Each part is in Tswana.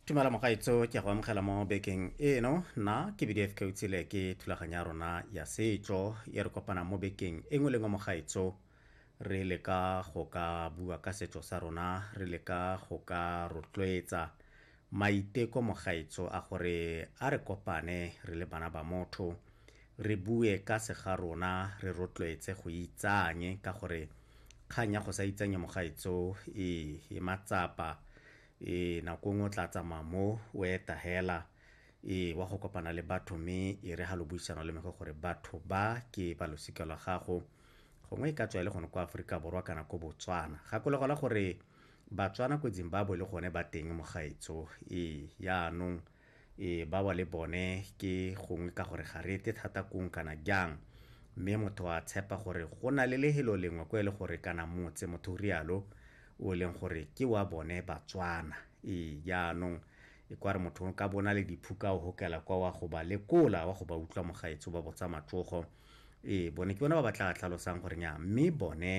tumela mogaetso ke go amogela mo bekeng eno na ke bdf keutsile ke thulaganya rona ya setso e re kopana mo bekeng e nngwe le nngwe mogaetso re leka go ka bua ka setso sa rona re leka go ka rotloetsa Maiteko mogaetso a gore a re kopane re le bana ba motho, re bue ka se ga rona, re rotloetse go itsanye ka gore kgang ya go sa itsanye mogaetso e e matsapa e nako nngwe o tla tsamaya mo o eta hela e wa go kopana le batho mme e re ha lo buisana le mege gore batho ba ke ba losika lwa gago gongwe e ka tswa e le gone kwa Aforika Borwa kana ko Botswana. Gakologelwa gore Batswana ko Zimbabwe le gone ba teng mogaetsho. Ee, yaanong ee ba wa le bone ke gongwe ka gore ga re ete thata kong kana jang. Mme motho a tshepa gore go na le lehelo lengwe ko e le gore kana motse motho o rialo o e leng gore ke wa bone Batswana. Ee, yaanong e kwa re motho o ka bona le diphuka o hokela kwa wa go ba lekola wa go ba utlwa mogaetsho ba botsa matsogo. ee bone ke bona ba ba tla tlhalosang gore nya mme bone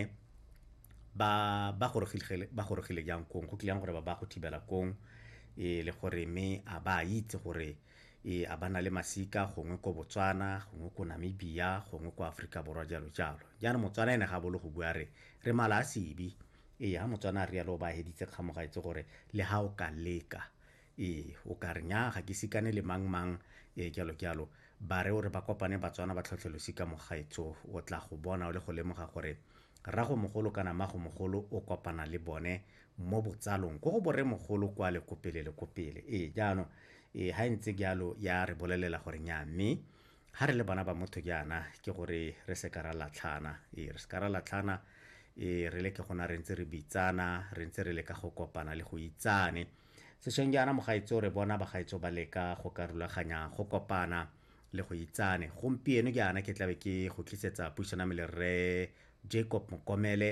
ba ba gorogile ba gorogile jang kong go tlileng gore ba ba go thibela kong e le gore me a ba itse gore e a ba na le masika gongwe ko botswana gongwe ko namibia gongwe ko aforika borwa jalo jalo jaanong motswana ene ga bolo go bua re re mala a sebe ee ga motswana a rialo o ba heditse kgamoga etse gore le ga o ka leka ee o ka re nya ga ke sikane le mang mang ee kyalo kyalo ba re o re ba kopane batswana ba tlhotlhelosi ka mogaetso o tla go bona o le go lemoga gore rrago mogolo kana mago mogolo o kopana le bone mo botsalong ko go bore mogolo kwa le kopele le kopele ee jaanong ee ga e ntse jalo ya re bolelela gore nya mme ga re le bana ba motho jaana ke gore re se ka ra latlhana ee re se ka ra latlhana ee re le ke gona re ntse re bitsana re ntse re le ka go kopana le go itsane Sešweng jaana mogaetso re bona bagaetso ba leka go ka rulaganya go kopana le go itsane. Gompieno jaana ke tlabe ke go tlisetsa puisano ya me le rre Jacob Mokomele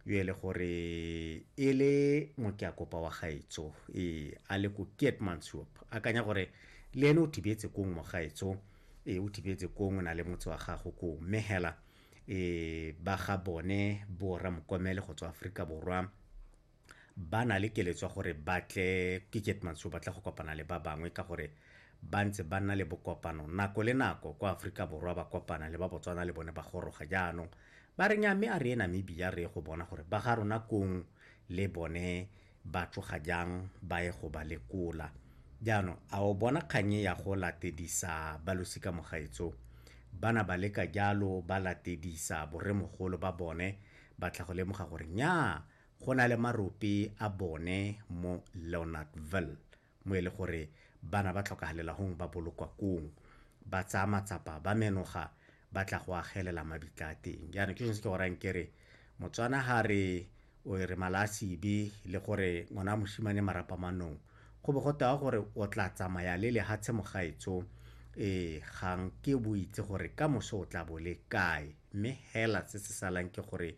yo e le gore e le mokeakopa wa gaetso ee a le ko Keetmanshoop akanya gore le ene o thibetse kong mogaetso ee o thibetse kong o na le motse wa gago kong mme hela ee ba ga bone borra mokomele go tswa Aforika Borwa ba na le keletso ya gore ba tle ke ketmantsho ba tla go kopana le ba bangwe ka gore ba ntse ba nna le bokopano nako le nako kwa aforika borwa ba kopana le ba botswana le bone ba goroga jaanong ba re nya mme a re e namibia re ye go bona gore ba ga rona kong le bone ba tloga jang ba ye go ba lekola jaanong a o bona kganye ya go latedisa ba losika mogaetso bana ba leka jalo ba latedisa boremogolo ba bone ba tla go lemoga gore nyaa go na le marope a bone mo leonardville mo e le gore bana ba tlhokagalela gong ba bolokwa kong ba tsaya matsapa ba menoga ba tla go agelela mabitla a teng jaanong ke sone se ke gorang kere motswana ga re o re mala a sebe le gore ngwana a moshimane marapa manong go bo go tewa gore o tla tsamaya le lehatshe mogaetso ee gang ke bo itse gore ka moso o tla bo le kae mme hela se se salang ke gore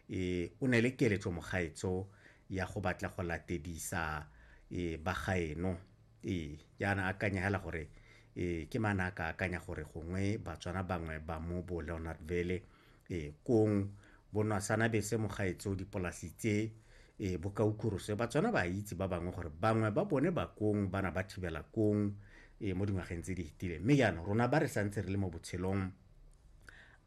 E, o ne le keletso mogaetso ya go batla go latedisa e, bagaeno e, jaana akanyegela gore e, ke mana a ka akanya gore gongwe batswana bangwe ba mo bo leonardville e, kong bonwasanabese mogaetso dipolasi tse e, bokaukurose batswana ba itse ba bangwe gore bangwe ba bone ba kong bana ba thibela kong e, mo dingwageng tse di fetileng mme jaanong rona ba re santse re le mo botshelong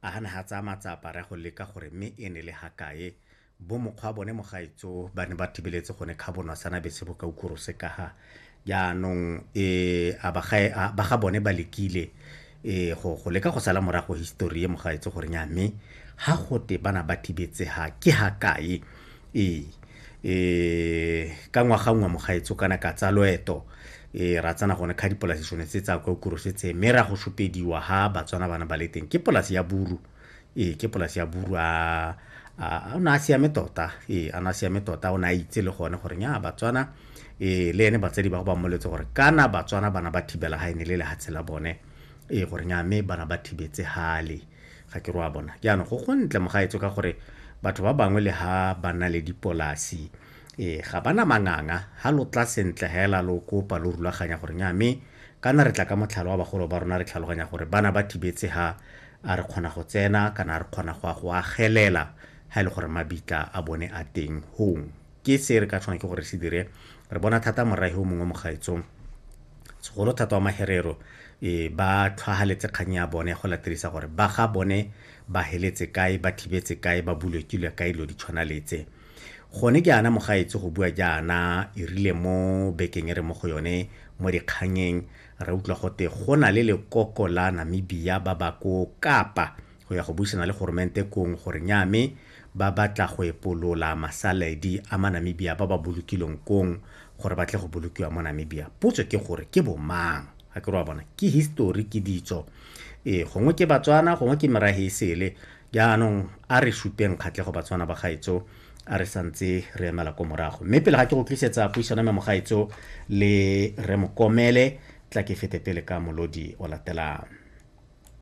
A ha ne ha tsaya matsapa re a go leka gore mme e ne le ha kae bo mokgwa bone mogaetso ba ne ba thibeletse gone kha bonwa sana bese bo ka ukuru se kaha jaanong e a ba ga a ba ga bone ba lekile e go go leka go sala morago history e mogaetso gore nya mme ha gote bana ba thibetse ha ke ha kae ee e ka ngwaga nngwe mogaetso kana ka tsa loeto e ra tsana gone kha dipolasi sone tse tsa kwa kuro se tse mme ra go shopediwa ha batswana bana ba le teng ke polasi ya buru ee ke polasi ya buru a o ne a siame tota ee a ne a siame tota o ne a itse le gone gore nya batswana ee le ene batsadi ba go ba mmoletse gore kana batswana bana ba thibela ga e ne le lehatshe la bone ee gore nya mme bana ba thibetse hale ga ke roa bona jaanong go go ntle mogaetso ka gore batho ba bangwe le ha ba na le dipolasi ee ga ba na manganga ga lo tla sentle fela lo kopa lo rulaganya gore nya mme kana re tla ka motlhalo wa bagolo ba rona re tlhaloganya gore bana ba thibetse ha a re kgona go tsena kana re kgona go a go agelela ha e le gore mabitla a bone a teng hong ke se re ka tshwana ke gore se dire re bona thata morahi o mongwe mo gaetsong Segolo thata wa Maherero e, ba tlhwahaletse kgang ya bone ya go laterisa gore ba ga bone ba heletse kae, ba thibetse kae, ba bulekilwe kae lo di tshwana letse. Gone ke ana mogaetsi go bua jaana erile mo bekeng e re mo go yone mo dikganyeng re utlwa gote go na le lekoko la Namibia ba ba ko Kapa go ya go buisana le goromente kong gore nya me Ba batla go epolola masaledi a Manamibia ba ba bolokilweng kong gore ba tle go bolokiwa mo Namibia. Potso ke gore ke bo mang? A ke re wa bona, ke history, ke ditso. Ee, gongwe ke Batswana, gongwe ke merahe e sele. Jaanong a re supeng kgatlhego Batswana ba gaetso a re sa ntse re emela ko morago. Mme pele ga ke go tlisetsa puisano ya me mogaetso le Rre Mokomele, tla ke fete pele ka molodi o latelang.